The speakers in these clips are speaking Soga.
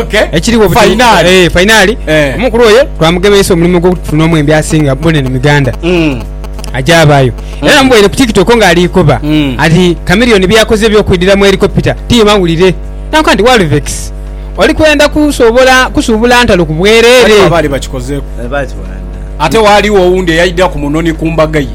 Okay. Ekiriwo buti- Fainali. Eh, fainali Eh. omukulu oyo twamugemeisa omulimu ogwokutufunamu embi asinga bunene mu uganda Mm. aja abaayo era namuboire ku tiktok nga aliikoba Mm. ati kamiliyoni byeyakoze ebyokwidira mu helicopita tiye mawulire nanka nti walvex oli kwenda kusobola kusuubula ntalo ku Waliwo bwereere abaali bakikozeeko Eh, bakiwanda ate waaliwo owundi eyaidira ku munoni ku mbaga ye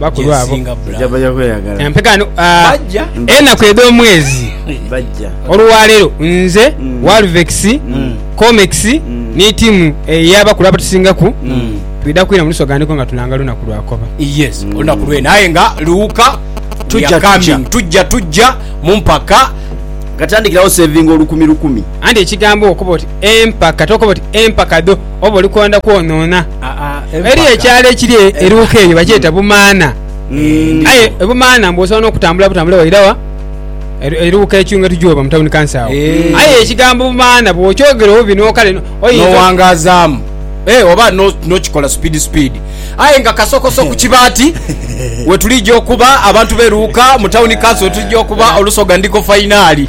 bakulu abo empeka enaku edh'omwezi olwaleero nze mm. walvex mm. comex mm. ni tiimu ey'abakulu abatusingaku twidha kwira mu lusoganiko nga tulanga lunaku lwakoba yes olunaku lwena aye nga luwuka tuyakamya tujja tujja mu mpaka katandikirawo sevinga olukumi lukumi anti ekigambo okuba oti empaka tokuba oti empaka dho oba oli kwenda kwonoona. Eriyo ekyalo ekiri eruuka eyo bakyeta hmm. Bumaana. Hmm. Aye Bumaana mbu osobola n'okutambula butambule waira wa eruuka ekyunga tujuba mu tawuni kansa awo. Hmm. Aye ekigambo Bumaana bw'okyogera obubi n'okale n'owangazaamu eh, oba n'okikola sipiidi sipiidi aye nga kasokoso ku kibaati wetulijja okuba abantu beruuka mu tawuni kansa wetulijja okuba olusoga ndiko fayinaali.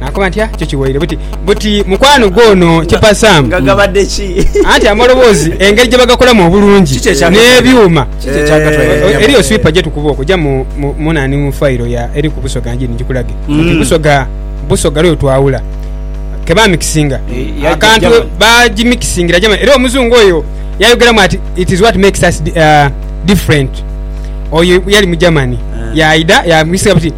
Nakoba ntya kyo kiwaire buti buti mukwano gwo ono kipa Sam. Nga gabadde ki? Anti amaloboozi engeri gye bagakolamu obulungi n'ebyuma. Eriyo swipa gye tukuba okwo ja mu nani mu fayiro ya eri ku Busoga Njiri njikulage nti mm. Busoga Busoga lwe twawula ke bamikisinga eh, akantu bagimikisingira Germany era omuzungu oyo yayogeramu ati it is what makes us uh, different oyo yali mu Germany eh. yaida yamikisinga buti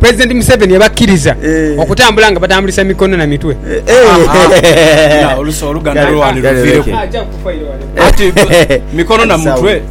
President Museveni yabakiriza okutambula nga batambulisa mikono na mitwe. Olusi oluganda lwewali luvireku ati mikono na mutwe.